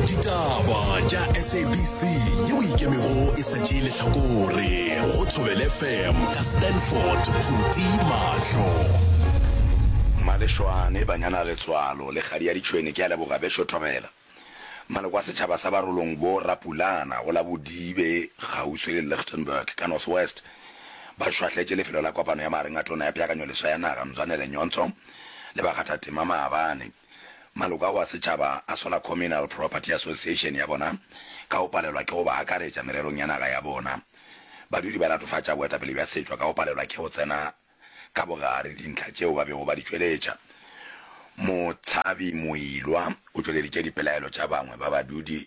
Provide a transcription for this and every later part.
ditaba tša sabc yeo ikemego e sa tšee lehlakore go thobele fm ka stanford phuti mahlo malešwane banyana letswalo le kgadi ya ditšhwene ke a leboga bešo thobela maloko a setšhaba sa barolong bo rapulana go la bodibe kgauswi le lichtenburg ka north west ba šwahletše lefelo la kopano ya magareng a tona ya peakanyo leswa ya naga mzwanele nyontsho le bakgathatema maabane Maloko ao a setšhaba a sola Communal Property Association ya bona ka go palelwa ke go ba akaretša mererong ya naga ya bona. Badudi ba latofatša boetapele bja setšwa ka go palelwa ke go tsena ka bogare dintlha tšeo ba bego ba di tšweletša. Motshabi Moilwa o tšweleditše dipelaelo tša bangwe ba badudi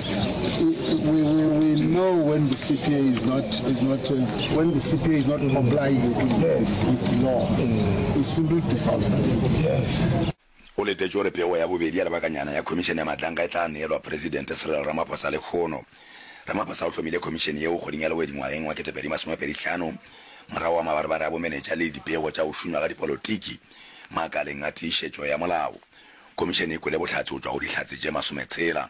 we, we, we know when the CPA is not is not uh, when the CPA is not complying yes. with law. Mm. We simply dissolve that. Yes. o letetše gore pego ya bobedi ya lebakanyana ya khomišene ya matlanka e tla neelwa presidente serelo ramaphosa le kgono ramaphosa o hlomile khomišene yeo kgoding ya lewedingwageng wa ketepedi masomepedi tlhano morago wa mabarebare a bomenetša le dipego tša go šunywa ga dipolotiki makaleng a tiišetšo ya molao khomišene e kwele bohlatse go tšwa go dihlatse tše masometshela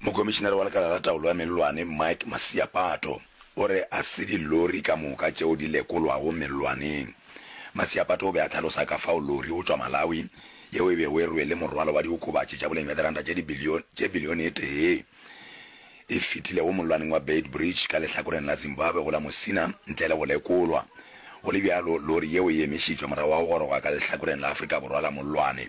Mokomišinare wa Lekala la Taolo ya Mellwane, Mike Masiapato, o re a se dilori ka moka tšeo di lekolwago mellwaneng. Masiapato o be a hlalosa ka fao lori go tšwa Malawi yeo e bego e rwele morwalo wa diokobatši tša boleng bja diranta tše bilione e tee e fetilego mollwaneng wa Beitbridge ka lehlakoreng la Zimbabwe go la Musina ntle le go lekolwa. Go le bjalo, lori yeo e emišitšwe morago ga go goroga ka lehlakoreng la Afrika Borwa la mollwane.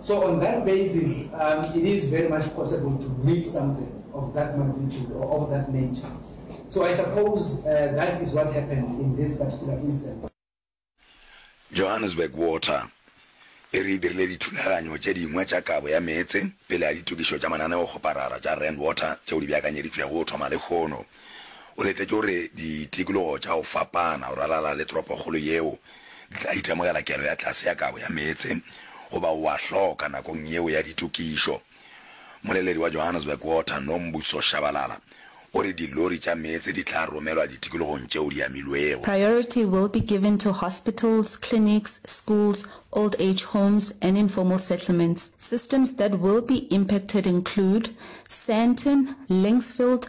So on that basis, um, it is very much possible to miss something of that magnitude or of that nature. So I suppose uh, that is what happened in this particular instance. Johannesburg Water e re dirile dithulaganyo tše dingwe tša kabo ya meetse pele ya ditokišo tša mananeo go parara tša rand water tšeo di beakanyeditšwego go thoma lekgono O letetše gore ditikologo tša go fapana go ralala le toropokgolo yeo di tla itemogela kelo ya tlase ya kabo ya meetse goba o a hloka nakong yeo ya ditokišo. Mmoleledi wa Johannesburg Water, Nombuso Shabalala, o re dilori tša meetse di tla romelwa ditikologong tšeo di amilwego. Priority will be given to hospitals, clinics, schools, old age homes and informal settlements. Systems that will be impacted include, Sandton, Linksfield,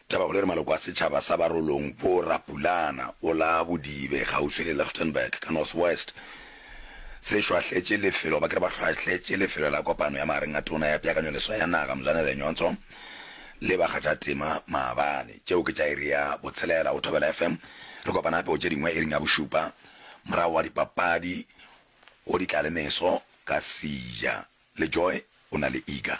Tabakgolo e re maloko a setšhaba sa barolong bo Rapulana o la Bodibe kgauswi le Lichtenburg ka North West se šwahletše lefelo ba ke re ba hlwahletše lefelo la kopano ya magareng a tona ya peakanyoleswa ya naga Mzwane Lenyonso le bakgathatema maabane. Tšeo ke tša iri ya botshelela go Thobela FM. Re kopana gape go tše dingwe iring ya bošupa morago ga dipapadi go ditlalemeso ka Sija le Joy o na le Iga.